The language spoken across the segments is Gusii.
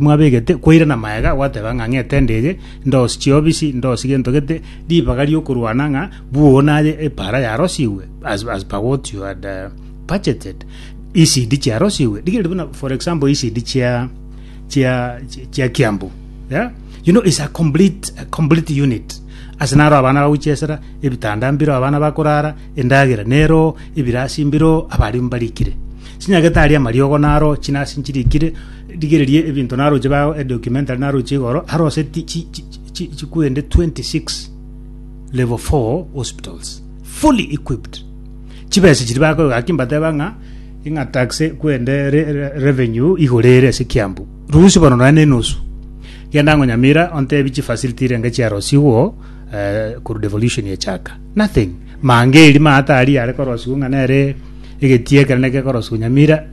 Mwabegete kwairana magega gwateba ng'a ng'ete ndege, ndosi chiobisi, ndosi gento gete, ribaga riokorwana ng'a bwoo naye epaara yarosigwe as as per what you had uh, budgeted. ECD chiarosigwe. Rigereria buna for example ECD chia chia chi- chia Kiambu. Yeah? You know it's a complete a complete unit. Ase naro abana baguchesera, ebitanda mbiro abana bakorara, endagera nero, ebirasi mbiro, abarimu barikire. Chinyagete aria amariogo naro, chinasi nchirikire, Rigereria ebinto naroche bao e documentary naroche igoro arose ti- chi- chi- chi- chi- chikwende 26 level 4 hospitals fully equipped chibesa chiri bakoiga aki mbateba ng'a ing'a tax kwende re- re- revenue igore ere ase kiambu rusi bono nonya na enusu genda ang'o nyamira ontebi chifacility renge chiarosigwo eh, korwa devolution echaka nothing mange eri maata aria are korosigwa ng'a nere egetia ekero negekorosiwa nyamira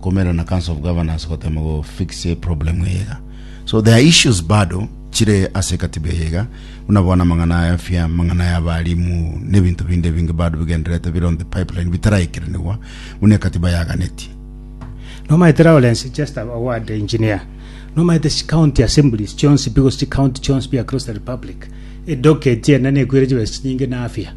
komererwa na council of governors gotema go fix e problem eye iga so there are issues bado chire ase katiba eye iga buna bono amang'ana ya afya amang'ana ya abalimu n'ebinto binde ebinge bado bigendererete bire on the pipeline bitaraikeranigwa buna ekatiba yaganetie Nomaete Lawrence Chester Award Engineer nomaete chi county assemblies chionsi pi gose chi county chionsi pi across the republic edocket ende nekwire chibesa chinyinge na afya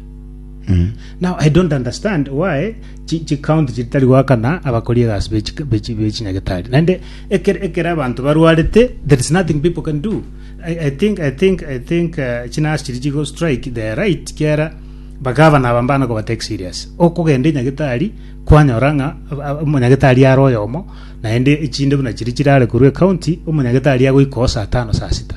now i don't understand why chi- chikaunti chiria tari goakana abakori egasi be chika- be chi- be chinyagetari naende ekere ekere abanto barwarete there is nothing people can do i, I think i think i think uh, chinasi chiri chigo strike they are right kiera bagavana aba mbana kobatake serious okogenda enyagetari kwanyora ng'a ab- ab- omonyagetari are oyomo naende echinde buna chiri chirare korwa ecounty omonyagetari agoika oo saa tano saa sita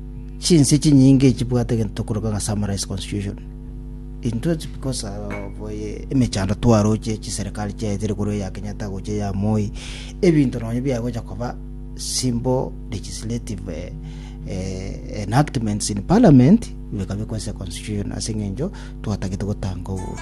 Chinse chinyinge echi chibwate egento tokoroka ng'a Summarized Constitution. Intwe because of emechando twaroche chiserikali chiaetire korwa eya Kenyatta gocha eya Moi, ebinto nonye biagocha koba simple legislative eh, eh, enactments in parliament bikabekwa ase constitution ase eng'encho twatagete gotanga obobe.